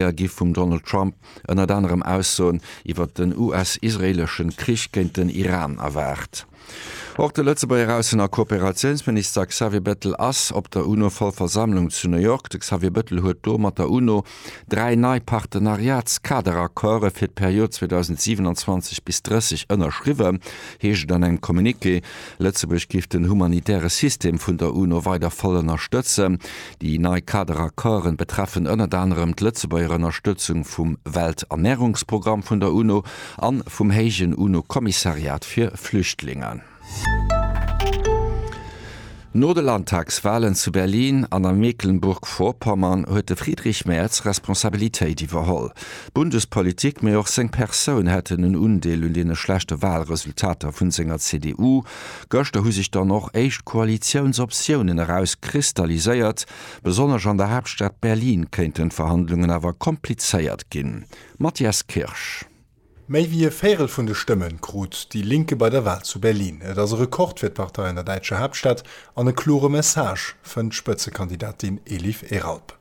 Fréier gi vum Donald Trump ënnert anerem Aussoen iwwer den US-israeeleschen Krich géint den Iran erwaart. Och de Lëtzebuerger Aussen a Kooperatiounsminister Xavier Bettel ass op der UNO-Vollversammlung zu New York. De Xavier Bettel huet do mat der UNO dräi nei Partenariats-Kaderaccorde fir d'Period 2027 bis 30 ënnerschriwwen, heescht et an engem Communiqué. Lëtzebuerg géif den humanitäre System vun der UNO weider voll ënnerstëtzen. Déi nei Kaderaccorden betreffen ënnert anerem d'Lëtzebuerger Ënnerstëtzung vum Welternärungsprogramm vun der UNO a vum héijen UNO-Kommissariat fir Flüchtlingen. No de Landtagswalen zu Berlin an a Mecklenburg-Vorpommern huet de Friedrich Merz Responsabilitéit iwwerholl. D'Bundespolitik, mee och seng Persoun hätten en Undeel un deene schlechte Walresultater vun senger CDU. Gëschter hu sech dann och éischt Koalitiounsoptiounen eraus kristalliséiert. Besonnesch an der Haaptstad Berlin kéinten d'Verhandlungen awer komplizéiert ginn. Matthias Kirsch. Méi wéi e Véirel vun de Stëmme krut déi Linke bei der Wal zu Berlin. Et ass e Rekord fir d'Partei an der däitscher Haaptstad an e klore Message, fënnt d'Spëtzekandidatin Elif Eralp.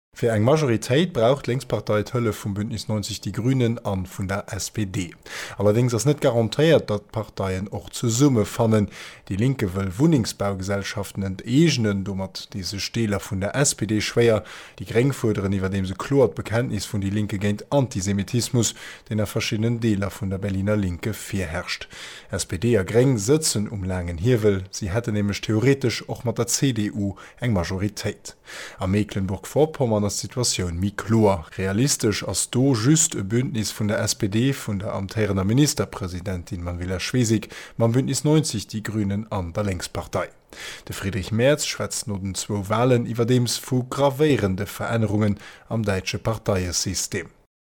Fir eng Majoritéit brauch d'Lénkspartei d'Hëllef vum Bündnis 90 Die Grünen a vun der SPD. Allerdéngs ass net garantéiert, datt d'Parteien och zesumme fannen. Déi Linke wëll Wunnengsbaugesellschaften enteegnen, domat dee sech Deeler vun der SPD schwéier. Déi Gréng fuerderen iwwerdeems e kloert Bekenntnis vun Die Linke géint Antisemitismus, deen a verschiddenen Deeler vun der Berliner Linke virherrscht. SPD a Gréng sëtzen um laangen Hiewel, si hätten nämlech theoretesch och mat der CDU eng Majoritéit. A Meeklenburg-Vorpommern ass d'Situatioun méi kloer. Realistesch ass do just e Bündnis vun der SPD, vun der amtéierender Ministerpresidentin Manuela Schwesig, mam Bündnis 90 Die Grünen an der Lénkspartei. De Friedrich Merz schwätzt no den zwou Walen iwwerdeems vu gravéierende Verännerungen am däitsche Parteiesystem.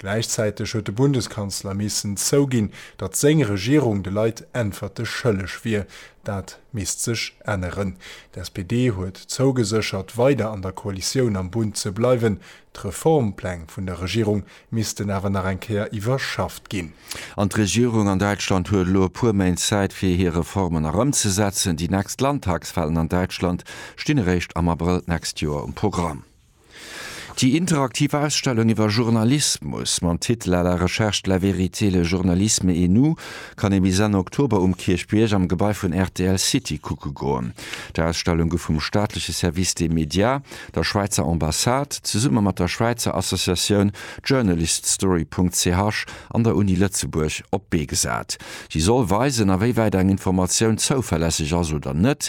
Gläichzäiteg huet de Bundeskanzler missen zouginn, datt seng Regierung de Leit Äntwerte schëlleg wier. Dat misst sech änneren. D'SPD huet zougeséchert, weider an der Koalitioun am Bund ze bleiwen. D'Reformpläng vun der Regierung missten awer nach eng Kéier iwwerschafft ginn. An d'Regierung an Däitschland huet elo e puer Méint Zäit, fir hir Reformen nach ëmzesetzen. Déi nächst Landtagswalen an Däitschland stinn eréischt am Abrëll d'nächst Joer um Programm. Déi interaktiv Ausstellung iwwer Journalismus mam Titel À la recherche de la vérité, le journalisme et nous kann ee bis Enn Oktober um Kierchbierg am Gebai vun rtl City kucke goen. D'Ausstellung gouf vum staatleche Service des médias, der Schwäizer Ambassade, zesumme mat der Schwäizer Associatioun Journaliststory.ch an der Uni Lëtzebuerg op d'Bee gesat. Si soll weisen, awéiwäit eng Informatioun zouverlässeg ass oder net,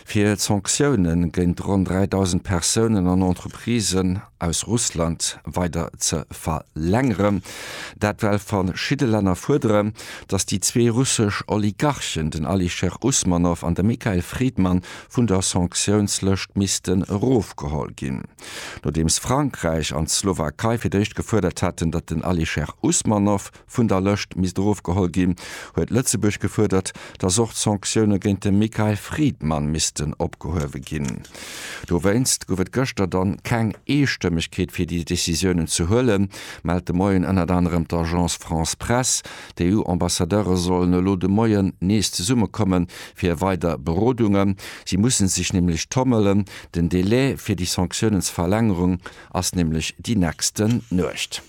Fir d'Sanktioune géint ronn 3.000 Persounen an Entreprisen aus Russland weider ze verlängeren. Dat well verschidde Länner fuerderen, datt déi zwee russesch Oligarchen, den Alisher Usmanov an de Mikhail Fridman, vun der Sanktiounslëscht missten erofgeholl ginn. Nodeems Frankräich an d'Slowakei fir d'éischt gefuerdert haten, datt den Alisher Usmanov, vun der Lëscht misst erofgeholl ginn, huet Lëtzebuerg gefuerdert, dass och d'Sanktioune géint de Mikael Fridman missten opgehuewe ginn. Dowéinst gouf et gëschter dann keng Eestëmmegkeet fir déi Decisiounen ze huelen, mellt de Moien ënnert anerem d'Agence France-Presse. D'EU-Ambassadeure sollen elo de Moien nees zesummekomme fir weider Berodungen. Si musse sech nämlech tommelen, den Delai fir déi Sanktiounen ze verlängerung ass nämlech déi nächsten Nuecht.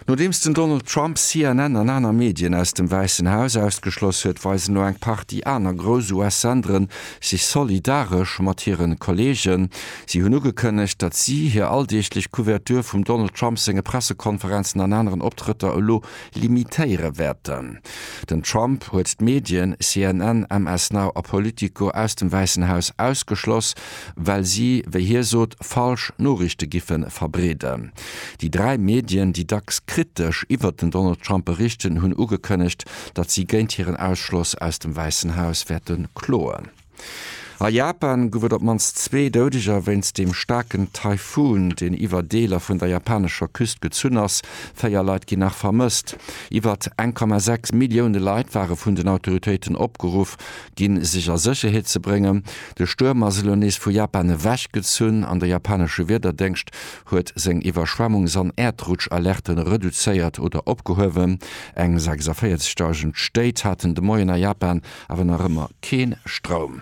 Nodeems den Donald Trump CNN an aner Medien aus dem Wäissen Haus ausgeschloss huet, weisen elo eng Partie aner grouss US-Sendere sech solidaresch mat hire Kolleegen. Si hunn ugekënnegt, datt si hir alldeeglech Couverture vum Donald Trump senge Pressekonferenzen an aneren Optrëtter elo limitéiere wäerten. Den Trump huet d'Medien CNN, MS Now a Politico aus dem Wäissen Haus ausgeschloss, well si, wéi hie sot, falsch Noriichte giffe verbreeden. Déi dräi Medien, déi dacks kritesch iwwert den Donald Trump berichten, hunn ugekënnegt, datt si géint hiren Ausschloss aus dem Wäissen Haus wäerte kloen. A Japan gouf et op d'mannst zwee Doudeger wéinst dem staarken Taifun, deen iwwer Deeler vun der japanescher Küst gezunn ass. Véier Leit ginn nach vermësst. Iwwert 1,6 Millioune Leit ware vun den Autoritéiten opgeruff ginn, sech a Sécherheet ze bréngen. De Stuerm ass elo nees vu Japan ewechgezunn an de japanesche Wiederdéngscht huet seng Iwwerschwemmungs an Äerdrutschalerte reduzéiert oder opgehuewen. Eng 46 Dausend Stéit haten de Moien a Japan awer nach ëmmer kee Stroum.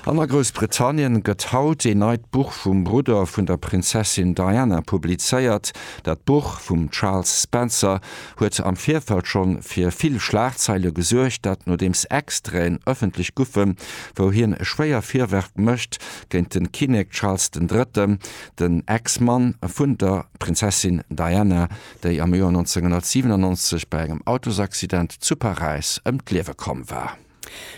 An a Groussbritannien gëtt haut een neit Buch vum Brudder vun der Prinzessin Diana publizéiert. Dat Buch vum Charles Spencer huet am Virfeld schonn fir vill Schlagzeile gesuergt, dat nodeems Extraiten ëffentlech goufen, wou hien schwéier Virwërf mécht, géint de Kinnek Charles den Drëtten, den Ex-Mann vun der Prinzessin Diana, déi am Joer 1997 bei engem Autosaccident zu Paräis ëm d'Liewe komm war.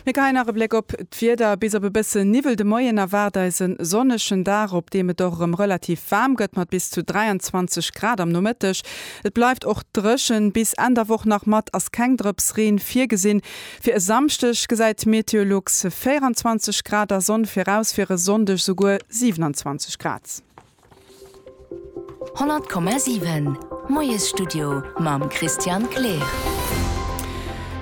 Mir geheien nach e Bléck op d'Wieder. Bis op e bësse Niwwel de Moien erwaart eis e sonnegen Dag, op deem et och erëm relativ waarm gëtt mat bis zu 23 Grad am Nomëtteg. Et bleift och dréchen bis Enn der Woch. Nach mat ass keng Drëps Reen virgesinn. Fir e Samschdeg gesäit d'Meteolux 24 Grad a Sonn viraus, fir e Sonndeg souguer 27 Grad. 100,7 Moiesstudio mam Christian Kleer.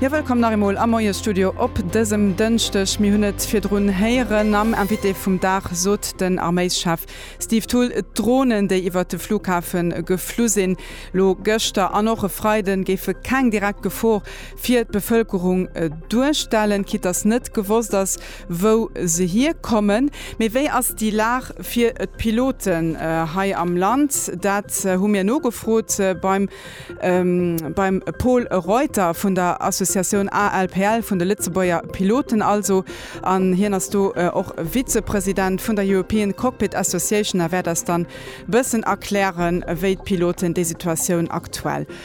Jo, wëllkomm nach eemol am Moiesstudio op dësem Dënschdeg. Mir hunn et virdrun héieren am Invité vum Dag, sot den Arméischef Steve Thull, d'Dronen, déi iwwert de Flughafe geflu sinn, elo gëschter an och e Freiden, géife keng direkt Gefor fir d'Bevëlkerung duerstellen, quitt datt net gewosst ass, wou se hierkommen. Mee wéi ass déi Lag fir d'Piloten hei am Land? Dat hu mir nogefrot beim beim Pol Reuter vun der Associatioun ALPL, vun de Lëtzebuerger Piloten also. An hien ass do och Vizepresident vun der European Cockpit Association a wäert eis dann bëssen erklären, wéi d'Piloten déi Situatioun aktuell